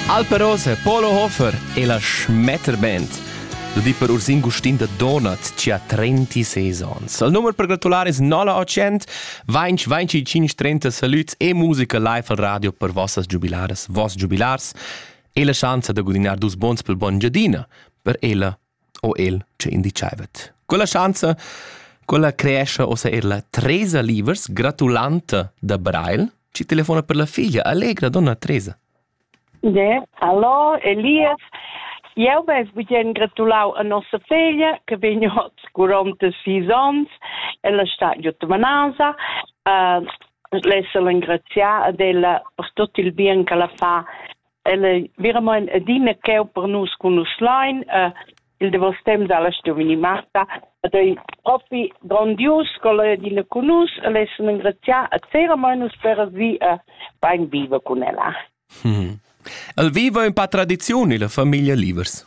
Alperos e Polo Hofer e la Schmetterband. Da di per Ursin Gustin da Donat ci ha 36 ons. Il numero per gratulare es 900 25 25 30 salüts e musica live al radio per vossas giubilaras, voss giubilars e la schanza da gudinar dus bons pel buon giadina per ella o el che indicaivet. Quella schanza quella creescha ossa er la Teresa Livers, gratulanta da Brail, ci telefona per la figlia. Allegra donna Teresa. Ne, hallo, Elias. Eu ves bien gratulau a nossa figlia, che vegn ot durante sis ons, ella sta giutta manasa, uh, l'essel engrazià ad ella per tot il bien che la fa El ei veramein adina cheu per nus cun nus lein. Uh, il davos temps dalla giovini Marta ed ei propi grondius ch'el ei adina cun nus. El ei sun engrazià a veramein nus per vi uh, bein viver cun ella. Hmm. El viva in pa tradiziun illa famiglia Livers.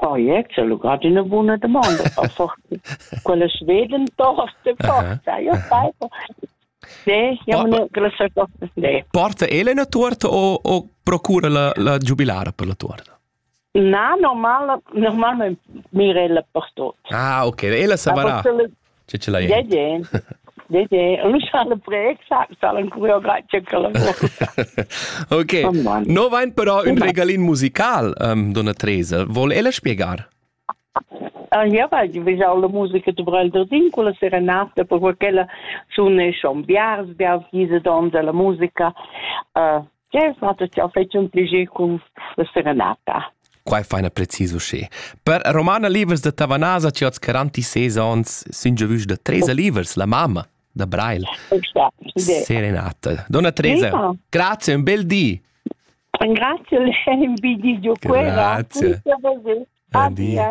Project, ha lugà d'üna buna damonda per fortuna. Quella sveden tosta forza, io sai. Ne, jam ne gresa tosta ne. Porta ele na tuorta o, o procura la, la giubilara per la tuorta? Na, normal, normalment mira ella per tot. Ah, ok, ella savarà. Tge ce l'hai? Dedé. Dedé. Un schale preg, salan choreografia Ok. No vain però ün regalin musical, um, donna Tresa. Vol ella spiegar? Ah, ja, weil die will alle Musiker zu Brelder Ding, con la serenata, per quella sono schon biars, biars diese donne della musica, uh, Jeu sa che jau fai un pligi cun la serenata. Quai fa ina precis uschè. Per Romana Livers da Tavanasa che oz 46 onns sun già vus da Teresa Livers, la mamma da Brail. Serenata. Donna Teresa, Prima. grazie, un bel di. Grazie, un bel di di Grazie. Buon dia.